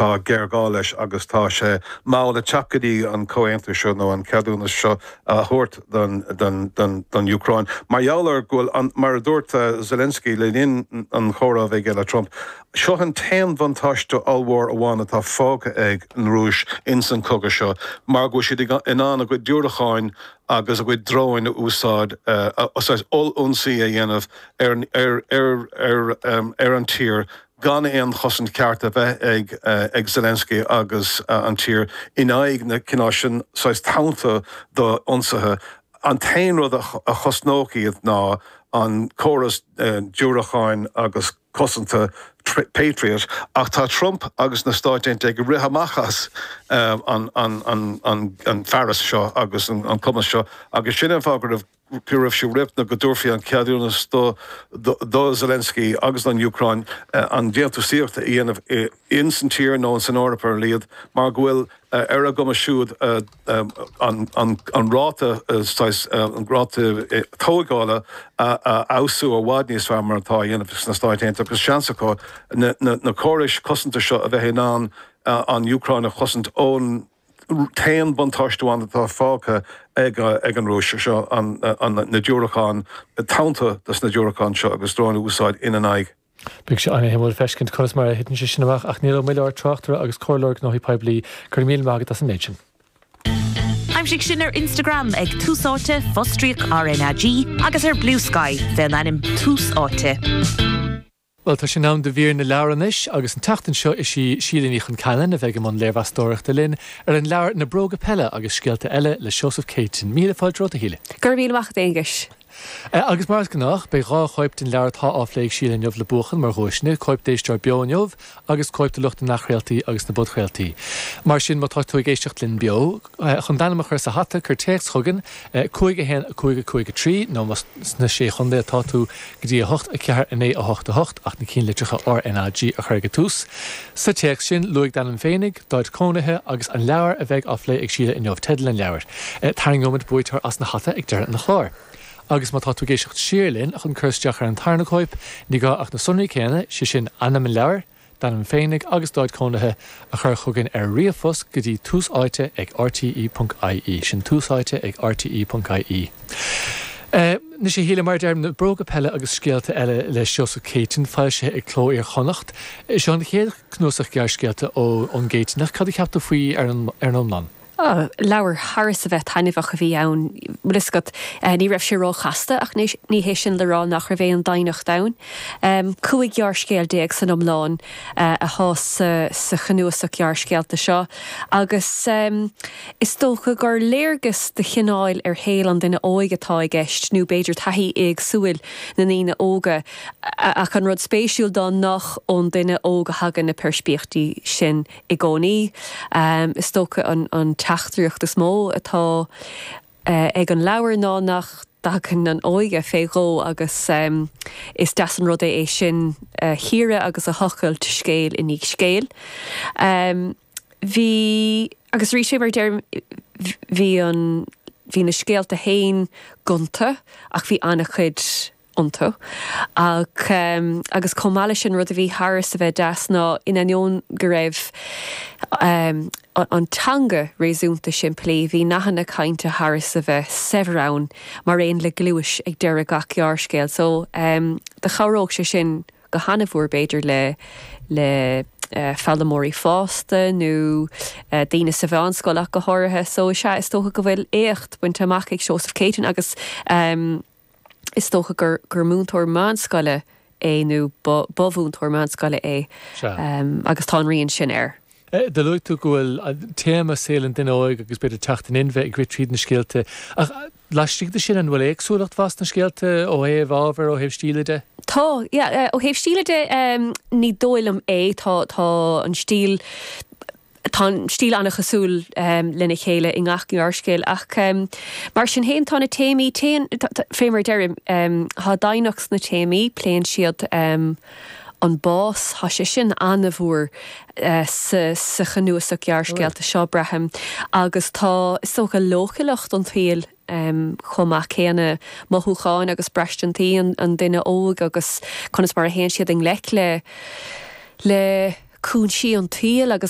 Tá géarghá leis agus tá sé mall ag teacht go dtí an comhaontú seo nó an ceadúnas seo a thabhairt don Úcráin mar gheall ar go bhfuil, mar a dúirt Zelensky le linn an chomhráidh aige le Trump, seo an t-aon bhuntáiste ollmhór amháin atá fágtha ag an Rúis ins an chogadh seo mar go bhfuil siad in ann a gcuid diúracáin agus a gcuid dróin a úsáid saghas oll-ionsaí a dhéanamh ar an tír gan aon chosaint cheart a bheith ag Zelensky agus an tír in aghaidh na cineál sin saghas tonnta d'ionsaithe. An t-aon rud a chosnódh iad ná an córas diúracáin agus cosanta Patriot, ach tá Trump agus na Stáit Aontaithe ag rith amach as an bhfearas seo agus an cumas seo agus sin an fáth go raibh. go raibh sé riachtanach go dtabharfaí an ceadúnas do Zelensky agus don Úcráin an déantúsaíocht a dhéanamh ins an tír nó ins an Eoraip ar a laghad mar go bhfuil ar a gcumas siúd an ráta saghas ráta tóigeála a fheabhsú i bhfad níos fearr mar atá á dhéanamh sna Stáit Aontaithe agus seans acu na córais cosanta seo a bheith in ann an Úcráin a chosaint ón t-aon buntáiste amháin atá fágtha ag an Rúis, is ea na diúracáin, tonnta dos na diúracáin seo agus dróin a úsáid ina n-aghaidh. Beidh sé an-suimiúil feiscint conas mar a thiteann sé sin amach ach Niall Ó Muilleoir, Tráchtaire agus Comhairleoir Gnóthaí Poiblí, go raibh míle maith agat as an méid sin. Aimsigh sinn ar Instagram ag Tús Áite, fostríoc RnaG, agus ar Bluesky, fén ainm Tús Áite. Bhuel, tá sé in am do mhír na leabhar anois agus an tseachtain seo is í Síle Ní Choinceannain a bheidh i mbun léirmheastóireachta linn ar an leabhar Na Bróga Peile agus Scéalta Eile le Seosamh Céitinn. Míle fáilte romhat, a Shíle. Go raibh míle maith agat, a Aonghuis. Agus mar is gnách, beidh dhá chóip den leabhar atá á phlé ag Síle inniu le buachan mar dhuaiseanna, cóip d'éisteoir beo inniu agus cóip do lucht na n-athchraoltaí agus na bpodchraoltaí. Mar sin, má tá tú ag éisteacht linn beo, Chun d'ainm a chur sa hata, cuir téacs chugainn, 5 1 5 5 3, nó más sna Sé Chontae atá tú, go dtí 8 4 9 8 8, ach na cinnlitreacha RNAG a chur ag an tús. Sa téacs sin, luaigh d'ainm féinig, d'áit chónaithe, agus an leabhar a bheidh á phlé ag Síle inniu, teideal an leabhair. Tarraingeoimid buaiteoir as an hata ag deireadh an chláir. Agus má tá tú ag éisteacht siar linn chun cur isteach ar an tarna cóip, ní gá ach na sonraí céanna, sé sin, ainm an leabhair, d'ainm féinig agus d'áit cónaithe a chur chugainn ar ríomhphost go dtí tús áite ag rte.ie, sin tús áite ag rte.ie. Anois a Shíle, mar a deirim, na bróga peile agus scéalta eile le Seosamh Céitinn, foilsithe ag Cló Iar-Chonnacht. Seo an chéad chnuasach gearrscéalta ón gCéitinneach. Cad a cheap tú faoi ar an iomlán? Ó, leabhar thar is a bheith taitneamhach a bhí ann, bhfuil 'fhios agat. Ní raibh sé ró-chasta ach ní hé sin le rá nach raibh aon doimhneacht ann. Cúig ghearrscéal déag san iomlán atá sa chnuasach gearrscéalta seo agus is dócha gur léargas de chineál ar shaol an duine óig atá i gceist, nó b'fhéidir taithí éagsúil na ndaoine óga. Ach an rud spéisiúil ná nach ón duine óg a thagann na peirspíochtaí sin. i gcónaí. Is dócha an teachtaireacht is mó atá ag an leabhar ná nach dtagann an óige fé dhó agus is deas an rud é sin a chíoradh agus a thochailt scéal i ndiaidh scéil. Bhí, agus arís mar a deirim, bhí an, bhí na scéalta féin gonta ach bhí an-chuid, iontu. Ach, agus chomh maith leis sin, rud a bhí thar is a bheith deas ná, in ainneoin go raibh an teanga réasúnta simplí, bhí nathanna cainte thar is a bheith saibhir ann, mar aon le gluais ag deireadh gach gearrscéil. So, do chabhródh sé sin go han-mhór, b'fhéidir, le foghlaimeoirí fásta nó daoine sa mheánscoil ach go háirithe. So, is ea, is dócha go bhfuil éacht bainte amach ag Seosamh Céitinn agus. is dócha gur gur múinteoir meánscoile é nó ba ba mhúinteoir meánscoile é agus tá a rian sin air. Do luaigh tú go bhfuil téama saol an duine óig agus b'fhéidir teacht in inmhe ag rith tríd na scéalta ach laistigh de sin an bhfuil éagsúlacht mhaith sna scéalta ó thaobh ábhair, ó thaobh stíle de? Tá, yeah, ó thaobh stíle de ní dóigh liom é, tá an stíl Tá an stíl an-chosúil lena chéile i ngach gearrscéal ach mar sin féin tá na téamaí, téann, fé mar a deirim, tá doimhneacht sna téamaí, pléann siad an bás, tá sé sin an-mhór sa chnuasach gearrscéalta seo, braithim, agus tá, is dócha, leochaileacht an tsaoil chomh maith céanna, mothúcháin agus braistintí an duine óig agus conas mar a théann siad i ngleic le cúinsí an tsaoil agus.